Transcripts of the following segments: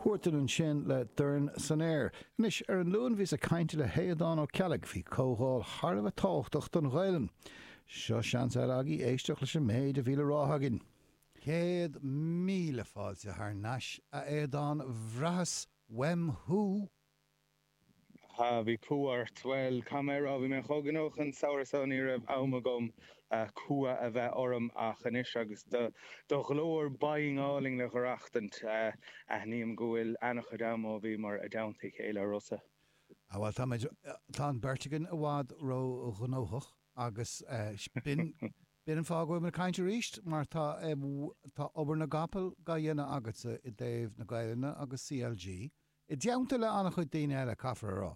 Huartan ansin le dorn san aer. Anois, ar an Luan bhíos ag caint le hAodán Ó Ceallaigh faoi comhdháil thar a bheith tábhachtach don Ghaelainn. Seo seans eile agaibh éisteacht leis an méid a bhí le rá againn. Céad míle fáilte thar nais, a Aodáin, bhraitheas uaim thú! ha, bhí cumha ort. Bhuel, caithfidh mé a rá, bhí mé chomh gnóthach an samhradh so ní raibh am agam cumha a bheith orm ach anois agus do do ghlór binn álainn le dh'aireachtaint, aithním go bhfuil ana-chuid am ó bhíomar i dteannta a chéile, a Rossa. ha, bhuel, táimid, tá an beirt againn i bhfad ró-ghnóthach agus b'in, b'in an fáth go bhfuilimid ag caint arís mar tá, tá obair na gcapall dhá dhéanamh agatsa i dtaobh na Gaelainne agus CLG, I dteannta le an-chuid daoine eile, caithfear a rá.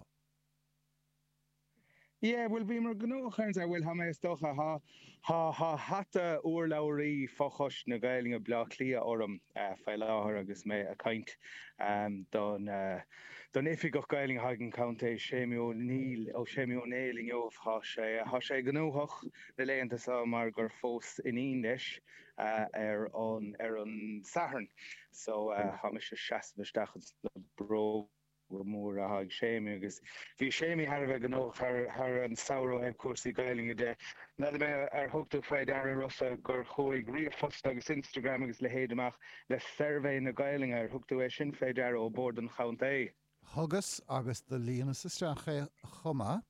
Yeah, bhuel, bhíomar gnóthach ar an Satharn, bhuel, tá mé, is dócha, tá, tá, tá hata urlabhraí fho-choiste na Gaeilge Bleá Cliath orm faoi láthair agus mé a' caint don, don Oifigeach Gaeilge atá ag an Contae, Séimí Ó Néill, ó Séimí Ó Néill inniu, tá sé, tá sé gnóthach na laethanta seo mar gur phós iníon leis ar an, ar an Satharn. so tá mise seasamh isteach ins na bróga móra atá ag Séimí agus bhí Séimí thar a bheith gnóthach thar an samhradh ó thaobh cúrsaí Gaelainne de. N'fheadar mé ar thug tú faoi deara Rossa gur chuaigh ríomhphost agus Instagram agus leithéid amach le suirbhé na Gaelainne, ar thug tú é sin faoi deara, ó Bord an Chontae? Thugas agus do líonas isteach é chomh maith.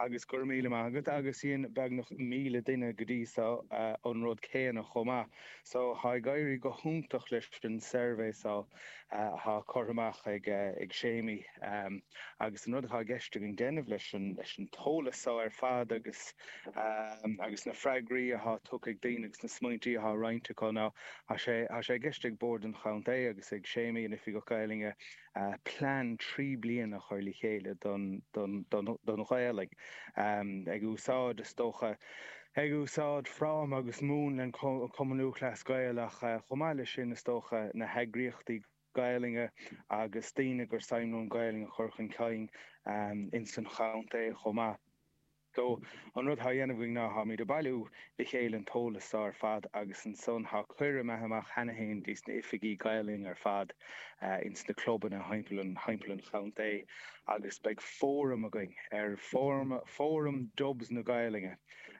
Agus go raibh míle maith agat. Agus dhein beagnach míle duine go dtí so an rud céanna chomh maith. So tá ag éirí go hiontach leis an suirbhé so atá curtha amach ag Séimí. Agus an rud atá i gceist againn déanamh leis an t-eolas so ar fad agus na freagraí atá tugtha ag daoine agus na smaointí atá roinnte acu ná Tá sé i gceist ag Bord an Chontae agus ag Séimí, an Oifigeach Gaelainne, plean trí bliana a chur le chéile don Ghaelainn, ag úsáid, is dócha, ag úsáid fráma agus múnla Chumann Lúthchleas Gael ach chomh maith leis sin, is dócha, na heagraíochtaí Gaelainne agus daoine gur suim leo an Ghaelainn a chur chun cinn ins an chontae chomh maith. So, an rud thá dhéanamh againn ná tháimid a bailiú le chéile an t-eolas so ar fad agus ansan thá cuireadh imithe amach cheana fhéin dtí's na hoifigigh Gaelainne ar fad ins na clubanna thimpeall an chontae agus beidh fóram againn ar Fóram Dubs na Gaelainne,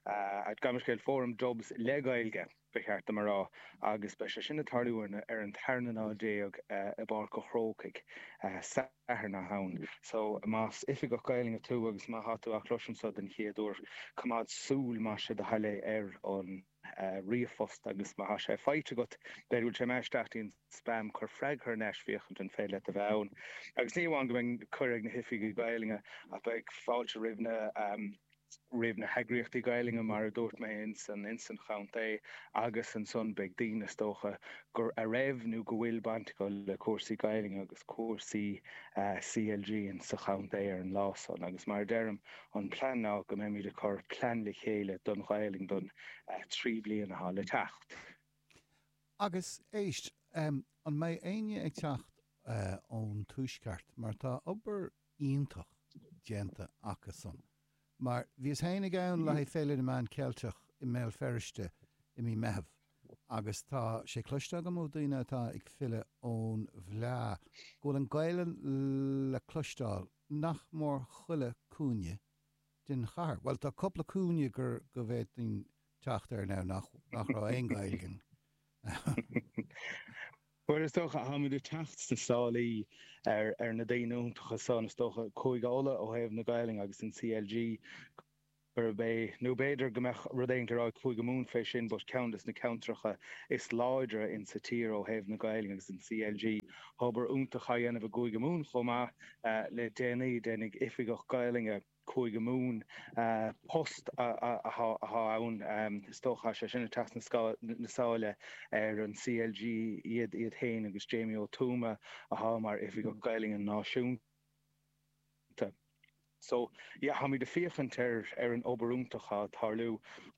gabh mo leithscéal, Fóram Dubs le Gaeilge. ba cheart dom a rá, agus beidh sé sin ag tarlú ar an tarna lá déag i bPáirc a' Chrócaigh Satharn seo chugainn. So, más Oifigeach Gaelainne tú agus má tá tú á chloisint seo den chéad uair, coimeád súil, más é do thoil é, ar an ríomhphost agus má tá sé faighte agat, b'fhéidir go bhfuil sé imithe isteach go dtí an spam, cuir freagra thar n-ais, féachaint an féidir leat a bheith ann. Agus ní amháin go mbeidh cuireadh ag na hOifigigh Gaelainne, ach beidh fáilte roimh na. roimh na heagraíochtaí Gaelainne, mar a dúirt mé, ins an ins an chontae agus ansan beidh daoine, is dócha, gur a raibh nó go bhfuil baint acu le cúrsaí Gaelainne agus cúrsaí CLG ins an chontae ar an lá san. Agus mar a deirim, an plean ná go mbeimid ag cur plean le chéile don Ghaelainn don trí bliana atá le teacht. Agus, éist, an mbeidh éinne ag teacht ón Tuaisceart, mar tá obair iontach déanta acusan. Mar bhíos féin ag ann le haghaidh Féile na Meán Ceilteach i mBéal Feirste i mí Meitheamh agus tá sé cloiste agam ó daoine atá ag filleadh ón bhfleá go bhfuil an Ghaelainn le cloisteáil nach mór chuile cúinne den chathair. Bhuel, tá cupla cúinne gur go bhféadfainn teacht air now nach raibh aon Ghaeilge ann. Bhuel, is dócha, táimid ag teacht sna sálaí ar na daoine iontacha san, is dócha, Cúige Uladh ó thaobh na Gaelainne agus an CLG gurb é, nó b'fhéidir go mbeadh rud éigin le rá ag Cúige Mumhan fé sin but ceann de na ceantracha is láidre in sa tír ó thaobh na Gaelainne agus an CLG. Tá obair iontach á dhéanamh i gCúige Mumhan chomh maith le déanaí, déanfaidh Oifigeach Gaelainne, Cúige Mumhan post atá ann. Is dócha, is é sin ag teacht sna sála ar an CLG iad féin agus Jamie Ó Tuama atá mar Oifigeach Gaeilge Náisiúnta. So, yeah, táimid ag féachaint ar an obair iontach atá ag tarlú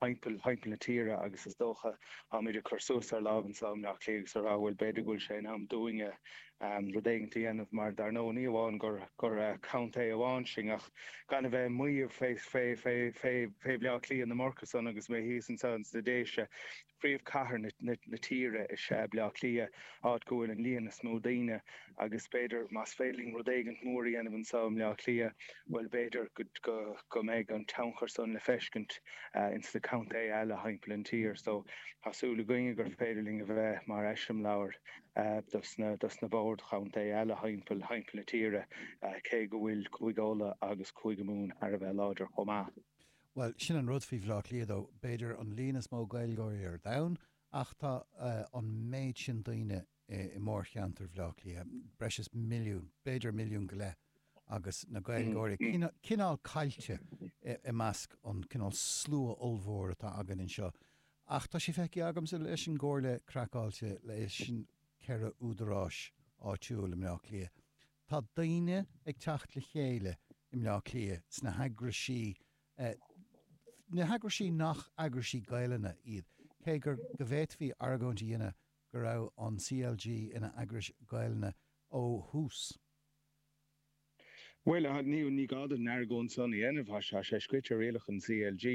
thimpeall na tíre agus is dócha táimid ag cur suas ár lámh anso i mBleá Cliath agus a rá, bhuel, b'fhéidir go bhfuil sé in am dúinne ann rud éigin a dhéanamh mar dar ndóigh ní amháin gur gur contae amháin sinn ach gan a bheith ag maíomh fé fé fé fé fé Bhaile Átha Cliath ná mar sin agus mé thíos anseo ins na Déise príomhchathair na na na tíre is ea Baile Átha Cliath áit go bhfuil an líon is mó daoine agus b'fhéidir más féidir linn rud éigin mór a dhéanamh anseo i mBaile Átha Cliath bhuel b'fhéidir go go go mbeidh an tionchar san le feiscint ins na contaetha eile thimpeall an tír so tá súil againne gur féidir linn a bheith mar eiseamláir dos na boird chontae eile thimpeall na tíre, cé go bhfuil Cúige Uladh agus Cúige Mumhan thar a bheith láidir chomh maith. Bhuel, sin an rud faoi Bhleá Cliath dó, b'fhéidir an líon is mó Gaeilgeoirí ar domhan, ach tá an méid sin daoine i mórcheantar Bhleá Cliath, breis is milliún, b'fhéidir milliún go leith, agus na Gaeilgeoirí cineál caillte i measc an cineál slua ollmhór atá againn anseo. Ach tá sé feicthe agamsa leis an gComhairle Craiceáilte, leis an ceithre údaráis áitiúil i mBleá Cliath, tá daoine ag teacht le chéile i mBleá Cliath sna heagraisí, na heagraisí nach eagraisí Gaelainne iad, cé gur, go bhféadfaí argóint a dhéanamh go raibh an CLG ina eagras Gaelainne ó thús. Bhuel, a Niamh, ní gá duit an argóint san a dhéanamh, thá sé scrite i rialacha an CLG,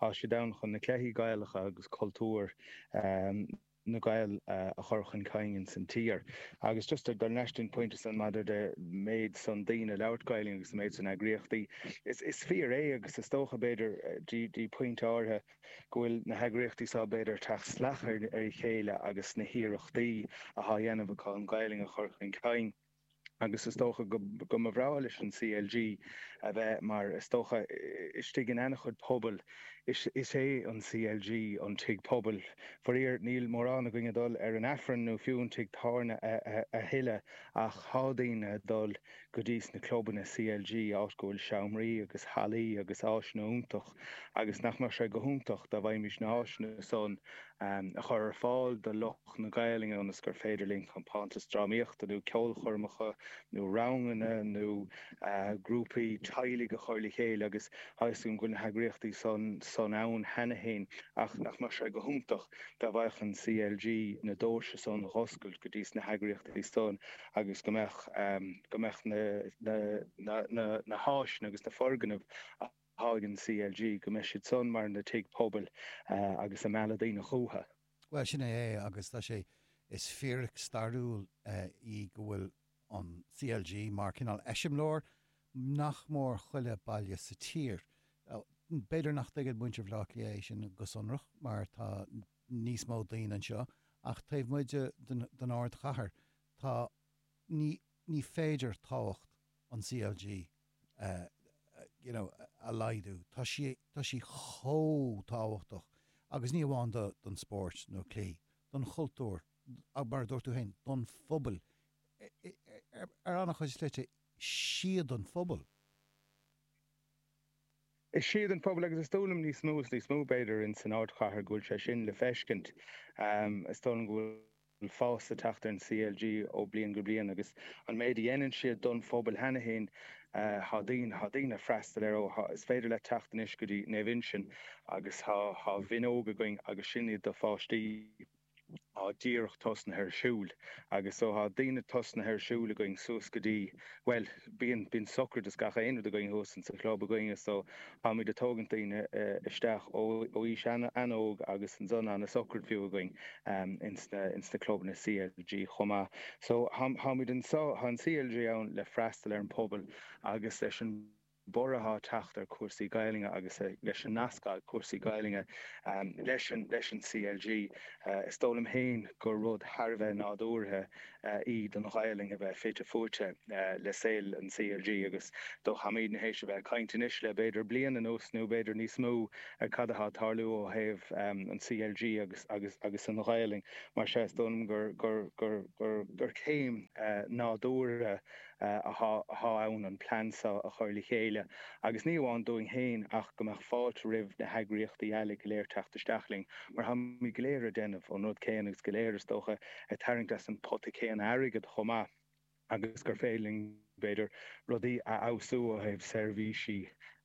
thá siad ann chun na cluichí Gaelacha agus cultúr na Gael a chur chun cinn ins an tír. Agus just dul leis an bpointe san maidir le méid san daoine ag labhairt Gaelainn agus an méid san eagraíochtaí, is fíor é agus is dócha b'fhéidir dtí pointe áirithe go bhfuil na heagraíochtaí seo b'fhéidir ag teacht salach ar a chéile agus na hiarrachtaí athá dhéanamh acu an Ghaelainn a chur chun cinn. agus is dócha go mba bhreá leis an CLG a bheith mar, is dócha, istigh in ana-chuid pobail, is é an CLG an tigh pobail. Faraor níl mórán againn ag dul ar an Aifreann nó fiú an tigh tábhairne a thuilleadh ach thá daoine ag dul go dtís na clubanna CLG, áit go bhfuil seomraí agus hallaí agus áiseanna iontach. agus nach mbeadh sé go hiontach dá bhfaighimís na háiseanna san a chur ar fáil do lucht na Gaelainne ionas gur féidir linn compántas drámaíochta nó ceolchoirmeacha nó ranganna nó grúpaí teaghlaigh a chur le chéile agus tá a fhios agam go bhfuil na heagraíochtaí san ann cheana féin ach nach mbeadh sé go hiontach dá bhfaigheadh an CLG na doirse san a dh'oscailt go dtís na heagraíochtaí san agus go mbeadh na háiseanna agus na foirgnimh atá ag an CLG go mbeidh siad san mar na tigh pobail agus ag mealladh daoine chútha. Bhuel, sin é é agus tá sé, is fíric stairiúil í go bhfuil an CLG mar cineál eiseamláir nach mór chuile baile sa tír. B'fhéidir nach dtuigeann muintir Bhleá Cliath é sin go sonrach mar tá níos mó daoine anseo ach taobh amuigh de den ardchathair tá, ní, ní féidir tábhacht an CLG you know, a laghdú. Tá sí, tá sí chomh tábhachtach agus ní amháin do, don spóirt nó cluichí, don chultúr, mar a dúirt tú féin, don phobail, ar an-chuid slite, 's iad an phobail. Is iad an phobail agus is dóigh liom níos mó is níos mó b'fhéidir in san ardchathair go bhfuil sé sin le feiscint. Is dóigh liom go bhfuil. bhfuil fás ag teacht ar an CLG ó bliain go bliain agus an méid a dhéanann siad don phobail cheana fhéin. Tá daoine, tá daoine ag freastal air ó, is féidir leat teacht anois go dtí Naomh Uinseann agus tá, tá mionóg againn agus sin iad do pháistí atá díreach tosnaithe ar siúl agus so tá daoine tosnaithe ar siúl againn suas go dtí, bhuel bíonn, bíonn sochraid is gach aon rud againn thuas insa chlub againne so. Táimid ag tógaint daoine isteach ó aois an-óg agus an zone an-socair fiú againn ins na clubanna CLG chomh maith. So táimid anseo, tá an CLG ann le freastal ar an pobal agus leis an borradh atá ag teacht ar cúrsaí Gaelainne agus leis an nasc atá ag cúrsaí Gaelainne leis an CLG, is dóigh liom féin gur rud thar a bheith nádúrtha í don Ghaelainn a bheith fite fuaite le saol an CLG agus go bhfuil, tháimid thar n-éis a bheith ag caint anois le b'fhéidir bliain anuas nó b'fhéidir níos mó ar cad atá ag tarlú ó thaobh an CLG agus agus an Ghaelainn mar sin is dóigh liom gur gur gur gur céim nádúrtha atá ann an plean seo a chur le chéile, agus ní amháin dúinn féin ach go mbeadh fáilte roimh na heagraíochtaí eile go léir teacht isteach linn, mar táimid go léir ag déanamh an rud céanna agus go léir, is dócha, ag tarraingt as an pota céanna airgead chomh maith, agus gur féidir linn, b'fhéidir, rudaí a fheabhsú ó thaobh seirbhísí.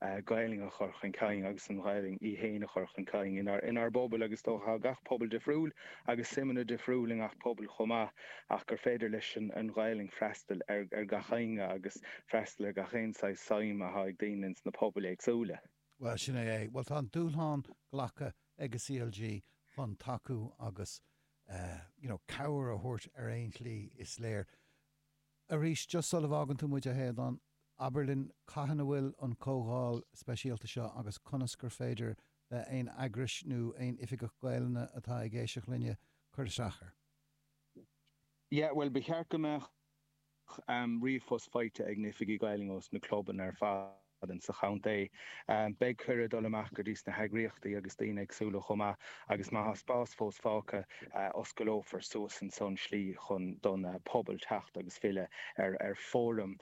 Gaelainn a chur chun cinn agus an Ghaelainn í héin a chur chun cinn inár bpobail agus is dócha tá gach pobal difriúil agus suimeanna difriúil i ngach pobal chomh maith ach gur féidir leis an Ghaelainn freastal ar gach éinne agus freastal ar gach aon saghas suim atá ag daoine ins na pobail éagsúla. Bhuel, sin é é. Bhuel, tá an dúshlán glactha ag an CLG chun tacú agus, you know, cabhair a thabhairt ar aon tslí, is léir. Arís, just sula bhfágann tú muid, a Aodhán, abair linn cathain a bhfuil an comhdháil speisialta seo agus conas gur féidir le aon eagras nó aon oifigeach Gaelainne atá ag éisteacht linne cur isteach air. Yeah, bhuel, ba cheart go mbeadh ríomhphost faighte ag na hoifigigh Ghaelainne ós na clubanna ar fad. Ann sa chontae. Beidh cuireadh dul amach go dtí sna heagraíochtaí agus daoine éagsúla chomh maith agus má thá spás fós fágtha, osclófar suas ansan an tslí chun don pobal teacht agus filleadh ar fóram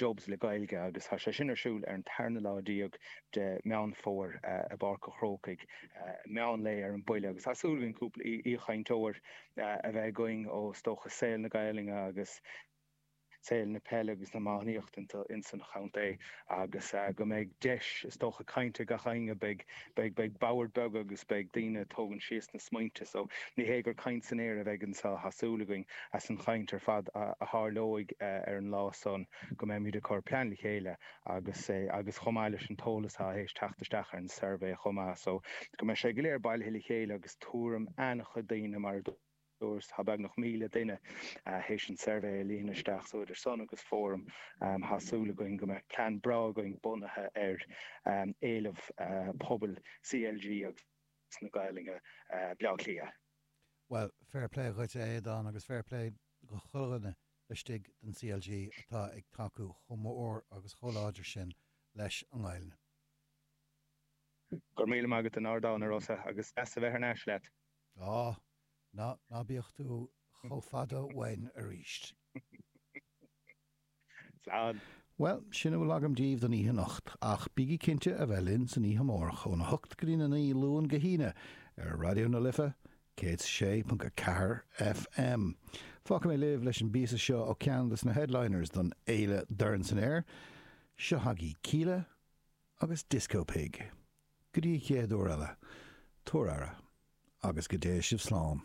Dubs le Gaeilge agus thá sé sin ar siúl ar an tarna lá déag de Meán Fómhair i bPáirc a' Chrócaigh meán lae ar an baile agus thá súil againn cúpla aoichainteoir a bheith againn ó, is dócha, saol na Gaelainne agus. saol na peile agus na iománaíochta ins an chontae agus go mbeidh deis is dócha caint ag gach éinne. Beidh beidh boird beag agus beidh daoine a tógaint síos na smaointe so ní hé gur caint san aer a bheidh anseo. Tá súil againn as an chaint ar fad a tharlóidh ar an lá san go mbeimid ag cur plean le chéile agus agus chomh maith leis an t-eolas atá th'réis teacht isteach ar an suirbhé chomh maith so go mbeidh sé go léir bailithe le chéile agus tuairim an-chuid daoine mar a Tá beagnach 1,000 duine théis an suirbhé a líonadh isteach so idir sin agus Fóram, Tá súil againn go mbeidh plean breá againn bunaithe ar éileamh pobail CLG agus na Gaeilge i mBleá Cliath. Bhuel, fair play dhuit a Aodáin agus fair play dho chuile dhuine laistigh den CLG atá ag tacú chomh mór agus chomh láidir sin leis an nGaelainn. Go raibh míle maith agat as an ardán, a Rossa, agus deas a bheith thar n-ais leat. Ná, ná, ná bíodh tú chomh fada uainn arís. Slán. Bhuel, sin a bhfuil agam daoibh don oíche anocht, ach bígí cinnte a bheith linn san oíche amárach óna hocht go dtína naoi, Luan go hAoine, ar Raidió na Life 106.4 FM. Fágfaidh mé libh leis an bpíosa seo ó ceann de na headliners don fhéile Dorn San Aer, seo chugaibh Kíla agus Disco Pig. Go dtí an chéad uair eile, tugaigí aire, agus go dté sibh slán.